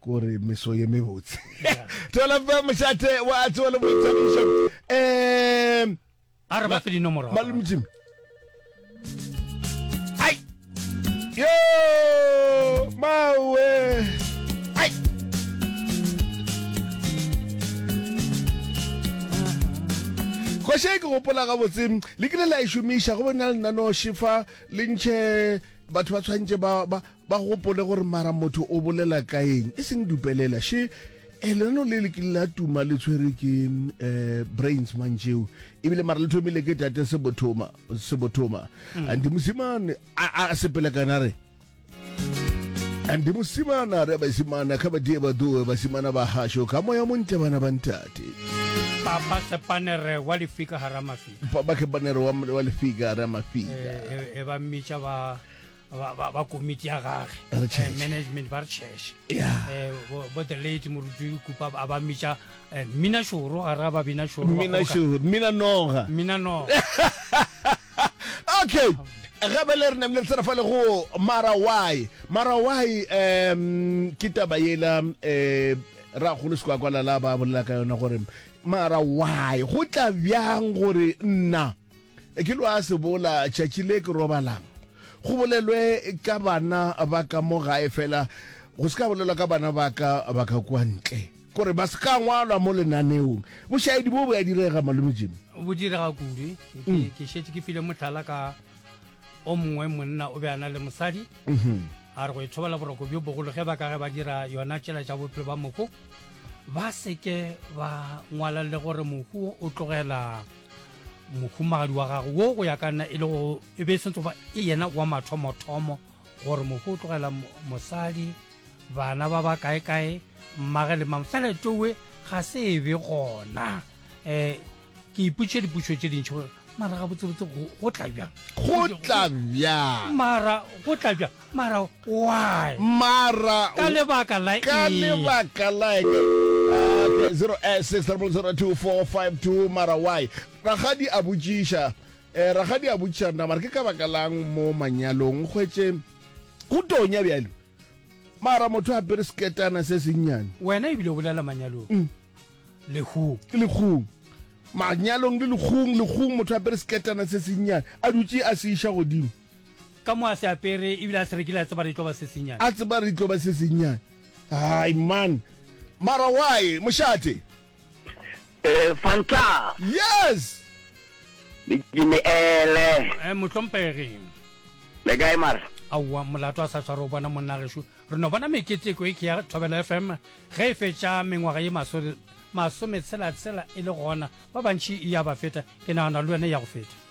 kore meso ye mebotse thola fa mošate wa tsewa le boithabišo um a re ba fe dinomoro malomjim ai yo mawe ai goše ke gopola gabotse le kile la e šomiša go bona lenanoši fa le ntšhe batho ba tshwanetse ba Ba gopole gore mara motho o bolela ka eng, e seng dupelela. She eh, lenano le le kile la tuma le tshwere ke eh, brains mantšeo ebile mara le thomile ke tate sebothoma sebothoma mm. and mosimane a sepele kana re and mosimana re basimana kha badie ba doe basimana ba hasho ka moya montle bana ba ntate papa sepanere wa lefika hara mafika papa sepanere wa lefika hara mafika e, e, e ba mmitša ba ba, ba, ba komiti ya gage Ba re eh, church. management ba re church Yeah. Eh, bo bo the late moruti kupa a ba mmitša eh, mmina šoro gare ga babina šoro ba mmina kgologa- šoro mmina noga mmina no okay gape le re ne le tsena fa le go marawai marawai um ke taba yela um ra golo se kwa kwalala ba bolela ka yona gore marawai go tla bjang gore nna E ke lo a se bola tšatši le ke robalang go bolelwe ka bana ba ka mo gae fela go se ka bolelwa ka bana ba ka ba ka kwa ntle kore ba se ka ngwalwa mo lenaneong bošaedi bo bo ya direga malome jimi bo direga kudu mm. ke šetše ke file motlhala ka o mongwe monna o be a na le mosadi mm-hmm. a re go ithobela boroko bjo bogolo ge ba ka ge ba dira yona tšela tša bophelo ba moko ba seke ba ngwala le gore mohu o tlogela mohumagadi wa gago wo go ya ka nna e le go e be e sentse goba e yena wa mathomothomo gore mohu o tlogela mosadi bana ba ba kae kae mmage le mang fela towe ga se e be gona um ke ipotše dipušo tše dintšhi gore mara ga botsebotse go tla bjang go tla bjang mara go tla bjang Mara why? Mara Ka lebaka la ka eng? lebaka la eng? Ah, okay, 086000242 mara why? Ragadi a botšiša eh, ragadi a botšiša rena mara ke ka baka lang mo manyalong hwetše go tonya bjalo mara motho a pere seketana se sennyane Wena ebile o bolela manyalong. Mm. Le who? ke lekgong manyalong le lekgong lekgong motho a pere seketana se sennyane a dutše a se iša godimo Ka mo a se apere ebile a se rekile a tseba re tlo ba se senyane. A tseba re tlo ba se senyane. Hai man. Mara why mošate? Eh Fanta. Yes. Dikini ele. Eh mohlompegi. Le kae mara? Aowa molato a sa tshware o bona monna gesho re no bona meketeko e ke ya Thobela FM ge e fetša mengwaga ye maso masometshela-tshela e le gona ba bantši e ya ba feta ke nagana le wena e ya go feta.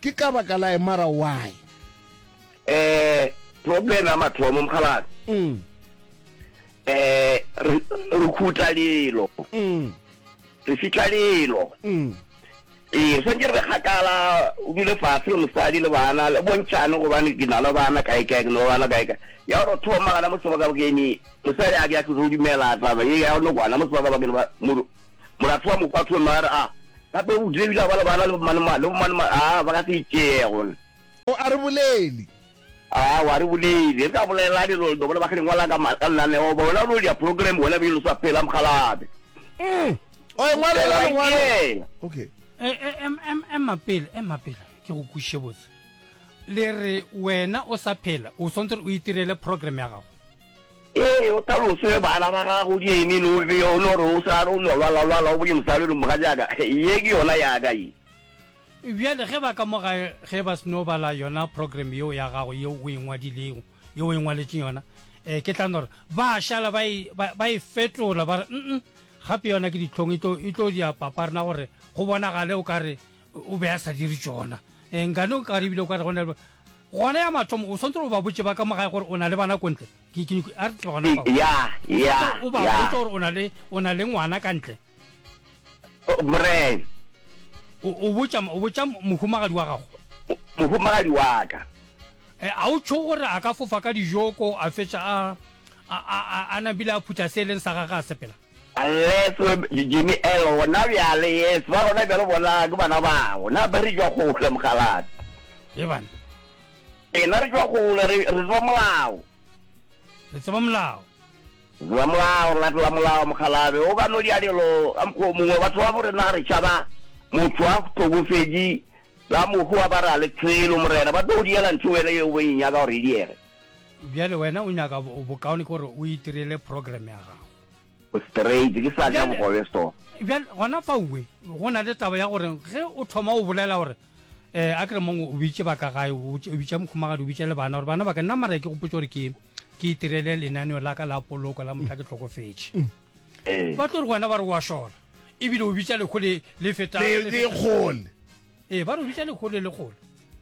Ke ka baka la emara why? Eh, problem ya mathomo mokgalabje. Mm. Eh, re re khutla lelo. Mm. Re fitla lelo. Mm. Eh, re santse re kgakala o dule fatshe le mosadi le bana le bontšhane gobane ke na le bana kae kae ke na le bana kae kae ya gore thoma gana mo sebakabakeng mosadi a ke a tlo dumela taba ye ya nokwana mo sebakabakeng ba Molato wa Mokwathwe mma a re, A gape o tlile ebile a ba le bana le bomanema, le bomanema, a ba ka se itšee gona. O a re boleli. A o a re boleli. Re ka bolela dilo le bona ba kgale ngwala ka ka lenaneo ba wena o dia program wena be lo sa phela mokgalabe. Mm. O e ngwala ka lengwalo. Okay. E e em em ema pele, ema pele. Ke go kwishe botse. Le re wena o sa phela o swantse o itirele program ya gago. Ee, o talose bana ba gago Jamie le Olivia, o no re o sa re o no lwala lwala o bone mosadi o re, Mogatšaka, ye ke yona ya ka ye. Bjale ge ba ka mo gae ge ba seno bala yona program yeo ya gago yeo o e ngwadilego, yeo o e ngwaletšeng yona, eh, ke tla no re, Ba šala ba e, ba, ba e fetola ba re, Nn, gape yona ke dihlong e tlo, e tlo dia papa rena gore go bonagale o ka re o be a sa dire tšona. Eh, nkane o ka re ebile o ka re go na le, Gona ya mathomo, o swantse gore o ba botše ba ka mo gae gore o na le bana ko ntle. Ke, ke, ke, a re tle gona fao. Ya, ya, Swantse o ba ya. botše gore o na le, o na le ngwana ka ntle. O, Brian, O, o botša, o botša mo- mohumagadi wa gago. mo- mohumagadi wa ka. E, a o tšho gore a ka fofa ka dijoko, a fetša a, a, a, a, a nabile a phutha se e leng sa gagwe a sepela? Unless we be Jimmy Earl gona bjale, yes, ba gona bjale bona ke bana bao, na be re tšwa kgole, mokgalabje. Ye bana. Rena re tšwa kgole, re, re tseba molao. Re tseba molao. Re tseba molao, re latela molao, mokgalabje. O ka no dia dilo ka mokgwa o mongwe, batho ba bo rena re tšhaba motho a hlokofetše ka mokgwa ba re a le tshelo, Morena, ba tlo go diela ntho wena yeo bo e nyaka gore e diege. Bjale wena o nyaka bokaone gore o itirele program ya gago. Straight, ke sa ja bogobe so. Bjale gona fauwe go na le taba ya gore ge o thoma o bolela gore eh a kere mongwe o bitše ba ka gae o bitša mokhumagadi o bitša le bana gore bana ba ka nna mara ke gopotse gore ke ke itirele lenaneo la ka la poloko la motla ke tlhokofetše mm. eh. ba tlo re wena ba re wa šola ebile o bitša lekgole le fetang lekgole ee ba re o bitša lekgole lekgole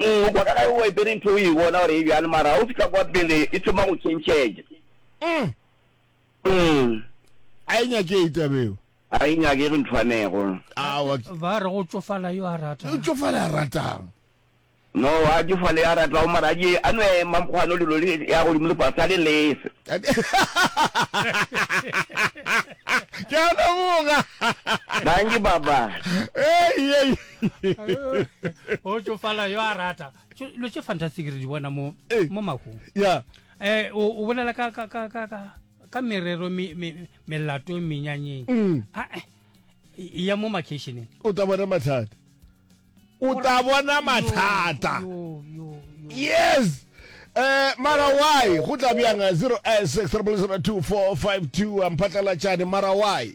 Umm, kwa ka ge o epere ntho o e bona gore e bjalo mara ga o fihla kwa pele e thoma go tšhentšhetša. Umm. Umm. A e nyakege taba eo. Ga e nyakege nthwanego. Aowa. Ba re go tšofala yo a ratang. O tšofala a ratang. No, a tšofale yo a ratago mara a je a nwe mamkgwano lelo le ya godimo le fase a le lese. Ke a leboga. Dankie, Papa. Hei, hei. o tsofala yo a rata lo tse fantastic re di bona mo eh. mo makung ya eh o bolela ka ka ka ka ka merero me me melato menyanyeng mm. a ah, eh, ya mo makeisheneng o tla bona mathata o tla bona mathata yes eh mara why go tla bjang 0 eh, 6 3 2 4 5 2 amphatlalatšane mara why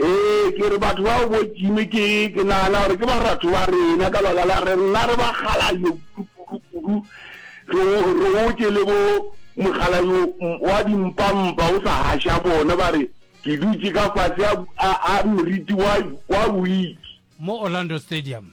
Ee, ke re batho bao bo Jimmy ke, ke nagana gore ke baratho ba rena ka baka la re nna re ba Galayo kudu kudu, re, re otše le bo mogalayo wa dimpampa o sa gaša bona, ba re ke dutše ka fase a, a, a meriti wa, wa wiki. Mo Orlando Stadium.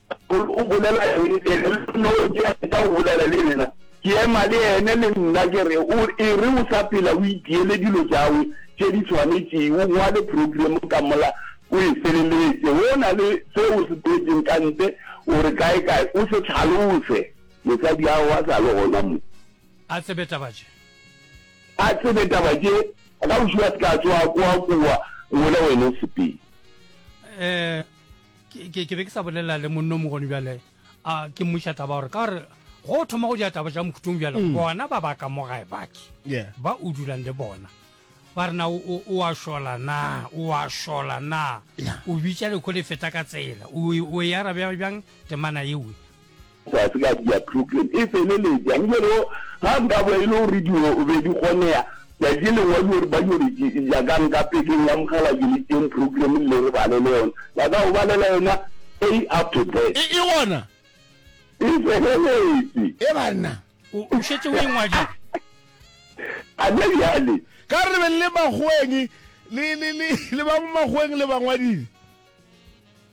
Paul o bolela eng e re le nna o ke a feta go bolela le yena? Ke ema le yene le nna ke re, O e re o sa phela o itiele dilo tšawe tše di swanetšego, o ngwale program ka mola o e feleletše. Go na le se o se boletšeng ka ntle o re kae-kae o se hlalose. Mosadi a hwa sa le gona mo. A tsebe taba tše. A tsebe taba tše. Kgauswi a se ka a tsoga kwa kua, ngwele wena o sepele. Eh. ke ke be ke sa bolela le monno mogoni bjale a ke mmuša taba gore ka gore go thoma go dira taba ja mokhutong bjale mm. bona ba baka mo gae baki ba o dulang le bona ba rena o a šola na o a šola na o bitša lekho le feta ka tsela o e arabe bjang temana ewe Sa se ka dira program e feleletša, nke re yo, ga nka bo e le gore dilo be di kgonega, tšatši lengwe wa dilo re ba dilo re jakang ka pekeng ya mogala ke le tšeng program le re balele yona, ba ka go balela yona a up to Z. E, e gona? E feleletše. E banna, o, o šetše o e ngwadile? A ne bjale. Ka re be le le makgoeng, le, le, le, le ba mo makgoeng le ba ngwadile?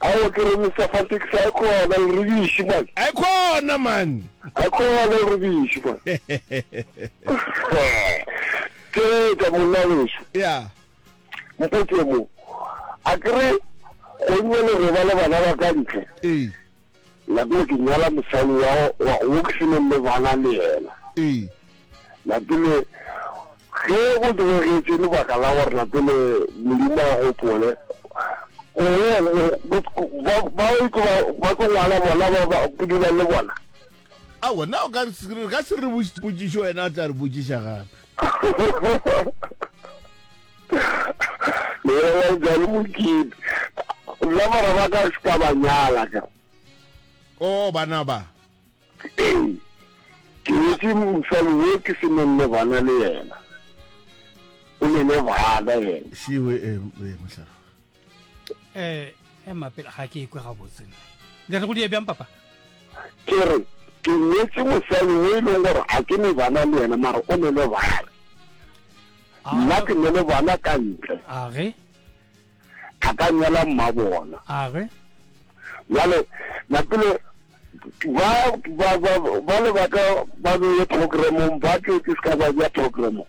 Aowa ke re Mister Fantekisi a khona le rebiši man. A khona man. A khona le rebiši man. Ke tsa monna weso. Yeah. Mpotse mo. A ke re go nne le roba le bana ba ka ntle. Ee. Lapile, Ke nyala mosali wa wa wo ke se neng le bana le yena. Ee. Lapile, Ge o tlogetše lebaka la gore Lapile Modimo a gopole, o ba ba e tlo ba ba tlo ngwala bona ba ba ke dula le bona. Aowa, na o ka re se re ka se re botšiše potšišo wena o tla re botšiša gape. Le bolela bjang Mokete? Nna bara ba ka se ka ba nyala ka. Oh, bana ba. Ee. Ke nyetše mosadi wo ke se nonne bana le yena. O nene bana yena. Shiwe, eh, eh, mohlala. eh ema pele ga ke ikwe gabotse le re go die bjang papa ke re ke nyetse mosadi o e leng gore a ke ne bana le yena mara o ne le bana ah. nna ke ne le bana ka ntle age a ka nyala mma bona age jale napele ba ba ba ba le ba ka ba beye programong ba ke ke se ka ba ja programong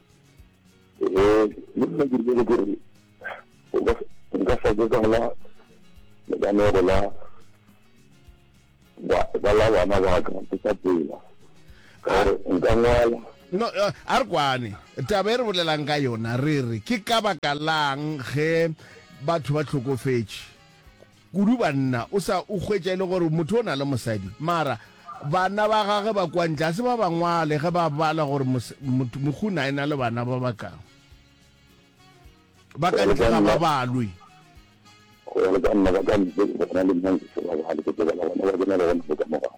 eh le nna ke rile gore nka sa ke ka la lekanero la ba la bana ba ka ke sa pela gore nka ngwala no uh, a re kwane taba e re bolelang ka yona re re ke ka baka lang ge batho ba tlhokofetše Kudu banna, o sa o hwetša e le gore motho o na le mosadi? Mara, bana ba gage ba kwa ntle, ga se ba ba ngwale ge ba bala gore mos, mot, moguna e na le bana ba ba kago? Ba ka ntle ga ba balwe. Go ya le ka nna, ba ka ntle bona le nna nka se ba bale, ke tlo bala bana ba bona le gona mo ka morago.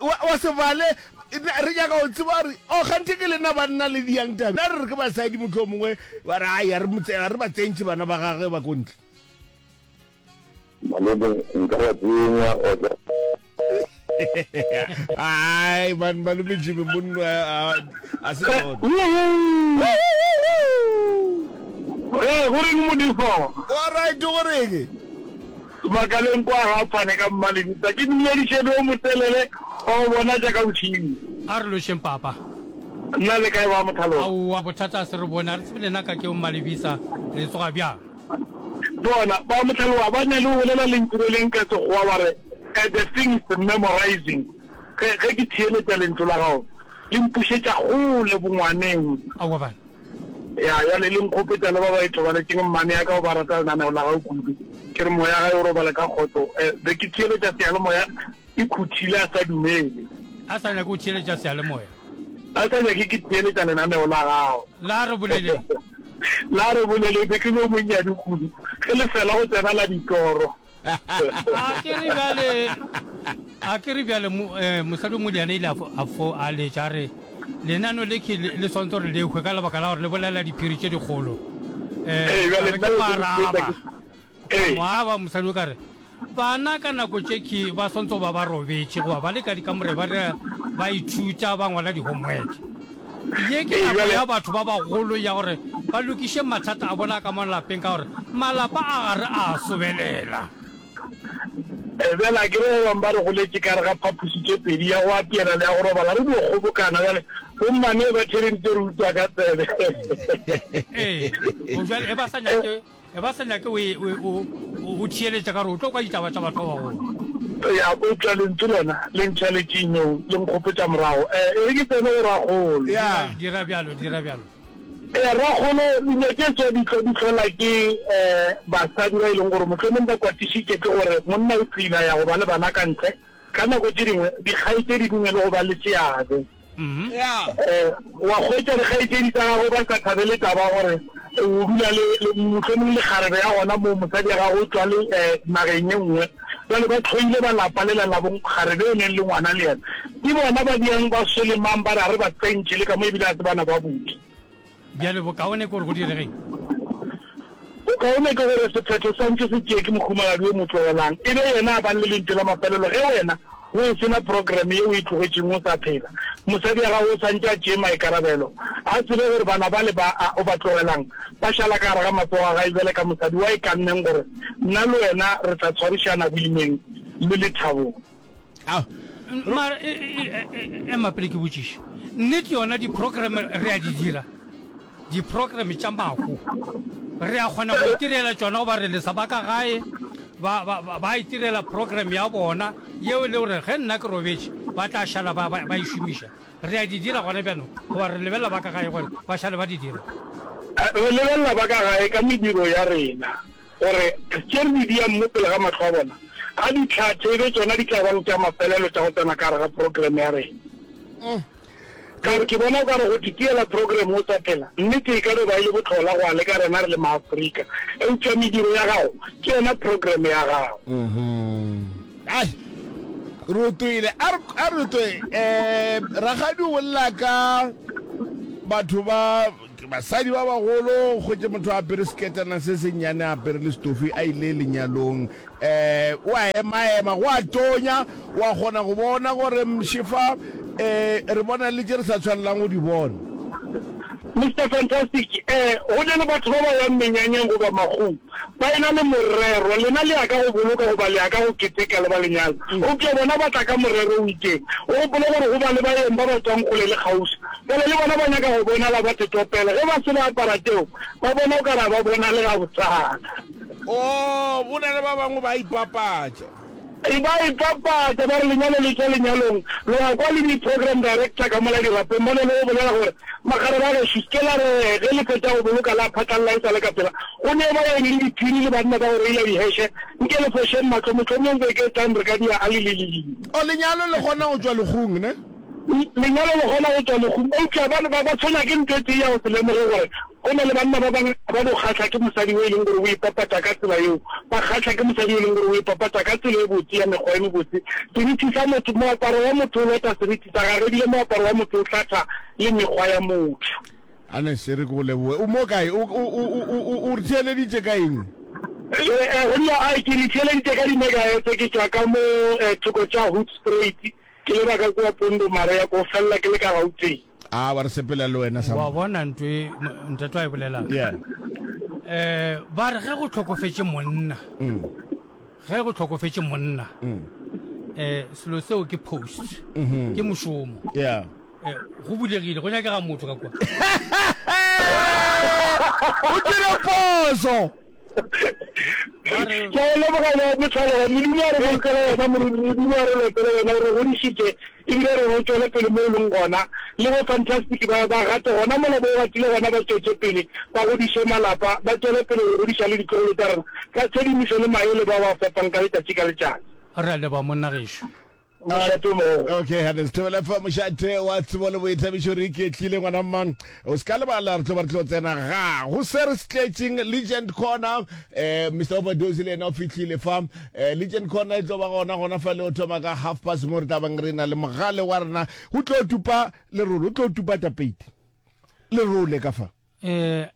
Wa, wa se bale, re nyaka go tseba gore o oh, gante ke lena banna le diyang tabe. Na re re ke basadi motho o mongwe ba re ai, ga re ba tsentše bana ba gage ba kontle. Malebe, nka ba tsenya otla. Ai, man, malome Jimmy, monno a se jone. Re, go reng modifo? Wa right, go reng? Makaleng kwa ga phane ka mmalebitsa ke mmiledišedi o motelele wa go bona tša ka bošego. A re lošeng papa. Nna le kae ba Mothaloga? Aowa bothata a se re bone a re tsebe lena ka ke o mmalebisa le tsoga bjang? Bona ba Mothaloga ba na le go bolela lentšu le leng ka Sekgowa ba re a the thing is memorizing ge ke theeletša lentšu la gago le mpušetša kgole bongwaneng. Aowa bana Ya, bjale le nkgopetša le ba ba ithobaletšeng mmane ya ka o ba rata lenaneo la gago kudu. Ke re moya gae o robale ka kgotso. Eh, be ke theeletša seyalemoya e khuthile a sa dumele. A sa nyake go theeletša seyalemoya. A sa nyake ke theeletša lenaneo la gago. La re boleleng. La re boleleng, be ke le yo monnyane kudu ge le fela go tsena la ditoro. A ke re bjale, a ke re bjale mo, eh, mosadi o modiana ile a fo- a fo a letša a re lenano le ke le le swanetse gore le hwe ka lebaka la gore le bolela diphiri tše dikgolo Eh, Ee, bjale a re nna ke be ke mo araba hwetša ke- Ka Ee. mo araba mosadi o ka re bana ka nako tše ke ba swanetse go ba ba robetše goba ba le ka dikamore ba dira- ba ithuta ba ngwala di-homework Ye ke nako ya batho ba bagolo ya gore ba lokiše mathata a bona a ka mo lapeng ka gore malapa a ga re a a sobelela. Bjale a ke re ba bangwe ba re goletše ka gare ga phapoši tše pedi, ya go apeela le ya go robala, re dio kgobokana. Bjale bomma ne ba therentše re utswa ka tsebe. Ee, go bjalo e ba sa nyake. E ba sa nyake o theeletša ka gore o tlo kwa ditaba tša batho ba bagolo. Eya, eupša Lentšu lona le ntšha letšinong, le nkgopetša morago. E re ke tsene go Rakgolo. Eya, dira bjalo, dira bjalo. Eya, Rakgolo, linyaketšwa di tlo di hlola ke basadi ba e leng gore mohlomong ba kwatišitše ke gore monna o tliila ya go ba le bana ka ntle. Ka nako tše dingwe dikgaetšedi di ne le go ba le seabe. wa kgwetsa dikgaetšedi tsa gago ba sa thabele taba ya gore o dula le mohlomong le kgarebe ya gona moo mosadi ya gago o tswa le um nageng e nngwe jale ba tlhoile ba lapa le lalabong kgarebe e neng le ngwana le yena ke bona ba diang ba solemang ba re a re ba tsentšhe le ka mo ebile a se bana ba bodi Bjale bokaone ke gore go diregeng? Bokaone ke gore sephetho sa ntše se tšee ke mohumagadi yo mo tlogelang, e be yena a bang le lentšu la mafelelo ge wena o e se na programe ye o e tlogetšeng o sa phela. Mosadi wa gago o sa ntše a tšee maikarabelo. A tsebe gore bana bale ba a o ba tlogelang ba šala ka gare ga matsogo a gae bjale ka mosadi wa e kanneng gore nna le wena re tla tshwarišana boimeng le lethabong. ao mara e, e, e, ema pele ke botšiše nnete yona di-program re a di dira di-program tša mako re a kgona go itirela tsona goba re lesa ba ka gae ba itirela program ya bona yeo e le gore ge nna ke robetše ba tla šala ba e šomiša re a di dira gona bjanong goba re lebelela ba ka gae gore ba šale ba di dira re lebelela ba ka gae ka mediro ya rena Gore a tšere di-diam mo pele ga mahlo a bona, a di tlhathe e be tšona di tla bang tša mafelelo tša go tsena ka gare ga program ya rena. Ka re, Ke bona o ka re go titiela program o sa phela, nnete e ka no ba e le bohlola go a leka rena re le maAfrika, eupša mediro ya gago ke yona program ya gago. Ai, re o toile. A re, a re o toe. Um, rakgadi o bolela ka batho ba. Ke basadi ba bagolo, o hwetše motho a apere seketana se se nnyane, a apere le stufi, a ile lenyalong. Ee, o a emaema, go a tonya, o a kgona go bona gore mši fa, ee, re bona le tše re sa tshwanelang go di bona. Mister Fantastic, ee, go na le batho ba ba yang menyanyeng goba magong, Ba e-na le morero, lena le ya ka go boloka goba le ya ka go keteka le ba lenyala, eupša bona ba tla ka morero o itšeng. O gopole gore go ba le baeng ba ba tšwang kgole le kgauswi, bjale le bona ba nyaka go bonala ba tetopela. Ge ba se ba apara tšeo, ba bona o ka re ga ba bonale gabotsana. Oo, go na le ba bangwe ba a ipapatša. E ba e papatša ba re lenyalo le tšwa lenyalong, lo ya kwa le di-program director ka mola dirapeng ba no lo bolela gore, Makgarebe a gešo, se ke la re ge le fetša go boloka la phatlalela e sa le ka pela, go neo ba yeng le diphiri le banna ba go reila diheshe, nke le fošeng mahlo, mohlomong beke e tlang re ka dia alililili. O lenyalo le kgona go tšwa legong, ne? Lenyalo le kgona go tšwa legong, eupša ba tshwenya ke ntho e tee ya go se lemoge gore Go na le banna ba bangwe ba bo kgahla ke mosadi yo e leng gore o ipapatša ka tsela yeo. Ba kgahla ke mosadi yo e leng gore o ipapatša ka tsela e botse ya mekgwa e mebotse. Seriti sa motho, moaparo wa motho o lota seriti sa gagwe, ebile moaparo wa motho o hlatha le mekgwa ya motho. Ernest, e re ke go leboge. O mo kae? O, o, o, o, o, o re theeleditše ka eng? Jwale, eh, go dira ai, ke le theeleditše ka di-megahertz. Ke tšwa ka mo, eh, thoko tša Hoedspruit, ke leba ka kua Pondomaria, ko felela ke le ka Gauteng. a ba re sepela le wena sa wa bona ntwe e, ntate wa e bolelang yeah eh ba re ge go tlhokofetse monna mm. ge go tlhokofetse monna mm. eh selo seo ke post mm-hmm. ke mošomo yeah eh, go bulegile go nyakega motho ka kwa o dire poso ba re ke a leboga ba botlhale wa modimo a re bolokela yena moredi modimo a re lotele yena o re godišitše ebile re go tšwele pele mo e leng gona le go fantastic ba ba gate gona mola bo gatile gona ba tšwetše pele ba godiše malapa ba tšwele pele go godiša le ditlogolo tsa rena ka tshedimošo le maele ba ba fepang ka letšatši ka letšatši re a leboga monna gešo Okay, ha this tebele fa mošate wa tsebo le boithabišo re iketlile ngwana mma o se ka lebala re tlo ba re tlo tsena ga go se re se tletšeng legend corner eh mr overdose le ena o fitlhile fa eh legend corner e tlo ba gona gona fa le o thoma ka half past mo re tla bang re na le mogale wa rena go tlo tupa le role o tlo tupa tapeiti le role ka fa eh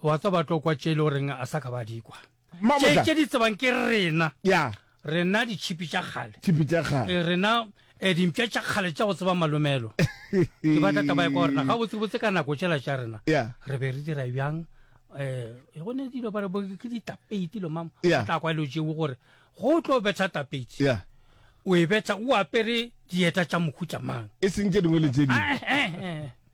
wa tsa ba tlo kwa tšele o reng a sa ka ba dikwa Mamotla. Tše di tsebang ke rena. Ya. Rena di chipi tša kgale. Chipi tša kgale. Eh, rena eh dimpša tša kgale tša go tseba malomelo. Ke batla taba ya kwa rena. Ga botse botse ka nako tšela tša rena. Ya. Re be re dira bjang eh e go ne dilo ba re bo ke ditapeiti lo mama. Ya. Tla kwa lo jewe gore go tlo betha tapeiti. Ya. O e betha o apere dieta tša mokhutša mang. E seng tše dingwe le tše dingwe. Ah, eh, eh, eh.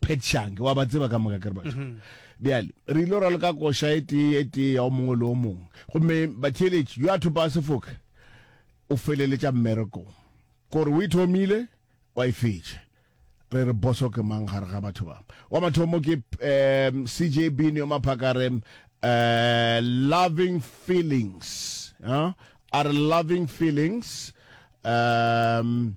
petshange wa ba tseba ka moka kere batho mhm. bjale re ile ra leka koša e tee e tee ya o mongwe le o mongwe gomme batheeletši yo a thopa sefoka o feleletša mmerekong kore o e thomile wa e fetša re re boso ke mang gare ga batho ba wa mathomo ke um cj bini yo maphakare um eh, loving feelings huh? are loving feelings um